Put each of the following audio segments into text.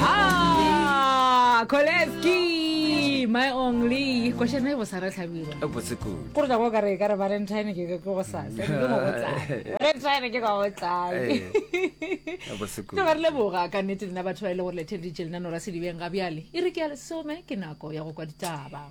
Ah, Koleski, my only. Kwa shana go sara tlhabira. e botse kudu Kore tšako ka re ka re Valentine ke ke go sa. Ke go tsaya. Valentine ke go tsaya. Eh, e botse kudu tloga re leboga ka nnete lena batho ba e le gore letheleditše lenanora sedibeng ga bjale e re ke ya lesome ke nako ya go kwa ditaba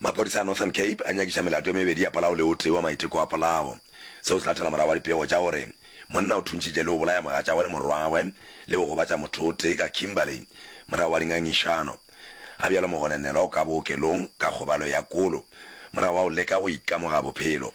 Maphodisa a Northern Cape a nyakiša melato e mebedi ya polao le o tee wa maiteko a polao. Seo se latela morago ga dipego tša gore monna o thuntšitše le go bolaya mogatšagwe le morwagwe le go gobatša motho o tee ka Kimberley morago ga dingangišano. Ga bjalo mogonenelwa o ka bookelong ka kgobalo ya kolo morago ga go leka go ikamoga bophelo.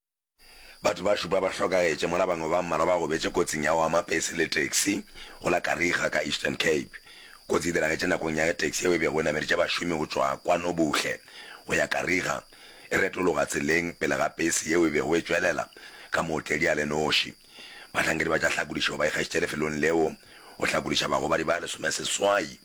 Batho ba šupa ba hlokagetše mola bangwe ba mmalwa ba gobetše kotsing ya go ama pese le taxi go la Kariega ka Eastern Cape. Kotsi e diragetše nakong ya ge taxi yeo e bego e nameletše bašomi go tšwa kwa Nobuhle go ya Kariega e retologa tseleng pele ga pese yeo e bego e tšwelela ka mootledi a le noši. Bahlankedi ba tša hlakodišo ba ikgašitše lefelong leo go hlakodiša bagobadi ba lesomeseswai.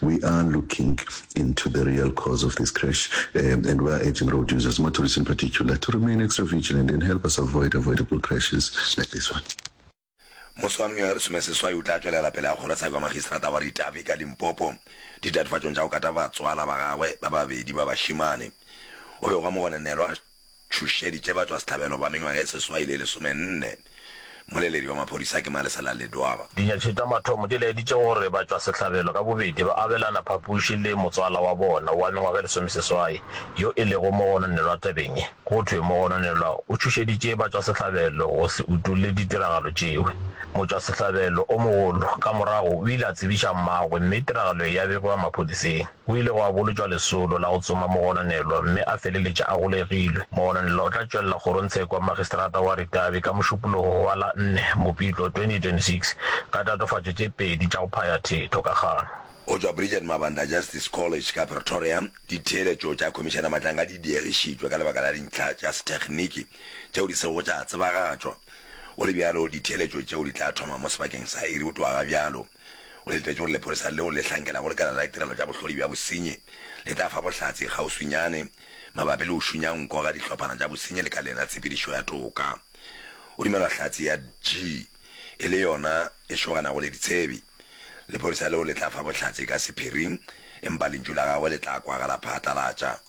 We are looking into the real cause of this crash um, and we are urging road users, motorists in particular, to remain extra vigilant and help us avoid avoidable crashes like this one. mose wa mengwaga lesome seswai o tla tswelela pele a kgoro tshabi wa magistrata wa ritavi ka limpopo ditatofatšong tša go kata batswala ba gagwe ba babedi ba bašimane o be gwa mogonenelwa tšhošeditše batšwasehlabelo ba mengwaga e seswai le lesomenne. Mmoleledi wa maphodisa ke Malesela Ledwaba. Dinyakši tša mathomo di laeditše gore batšwasehlabelo ka bobedi ba abelana phapoši le motswala wa bona wa mengwaga e lesomeseswai yo e lego mogononelwa tabeng ye. Go thwe mogononelwa o tšhošeditše batšwasehlabelo go se utolle ditiragalo tšeo. Motšwasehlabelo o mogolo ka morago o ile a tsebiša mmagwe mme tiragalo ye ya begwa maphodiseng. Go ile gwa bolotšwa lesolo la go tsoma mogononelwa mme a feleletša a golegilwe. Mogononelwa o tla tšwelela kgorongtshekwa Magistrata wa Ritavi ka Mošupologo wa la 4 Mopitlo 2026 ka tatofatšo tše pedi tša go phaya thetho ka kgang. Go tšwa Bridget Mabanda Justice College ka Pretoria, ditheeletšo tša Khomišene Matlanga di diegišitšwe ka lebaka la dintlha tša sethekniki tšeo di sego tša tsebagatšwa. Go le bjalo, ditheeletšo tšeo di tla thoma mo sebakeng sa iri go tloga ga bjalo. O letetše gore lepolesa leo le hlankela go lekala la ditirelo tša bohlodi bja bosenyi le tla fa bohlatse kgauswinyane mabapi le go šunya nko ga dihlophana tša bosenyi lekaleng la tshepedišo ya toka. Go dumelwa hlatse ya G e le yona e šoganago le ditshebi. Lepolesa leo le tla fa bohlatse ka sephiring empa lentšu la gagwe le tla kwagala phatlalatša.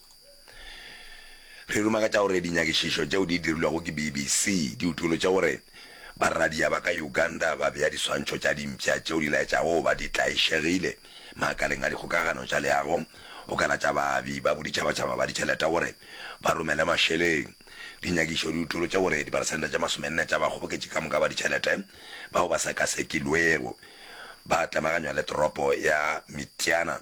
Re ruma ka tša gore dinyakišišo tšeo di dirilwego ke BBC di utolotše gore barradia ba ka Uganda ba bea diswantšho tša dimpša tšeo di laetšago go ba di tlaišegile makaleng a dikgokagano tša leago go ka lata baabi ba boditšhabatšhaba ba ditšhelete gore ba romele mašeleng. Dinyakišo di utolotše gore diperesente tše masomenne tša bakgoboketši ka moka ba ditšhelete bao ba sekasekilwego ba tlemaganywa le toropo ya Mityana.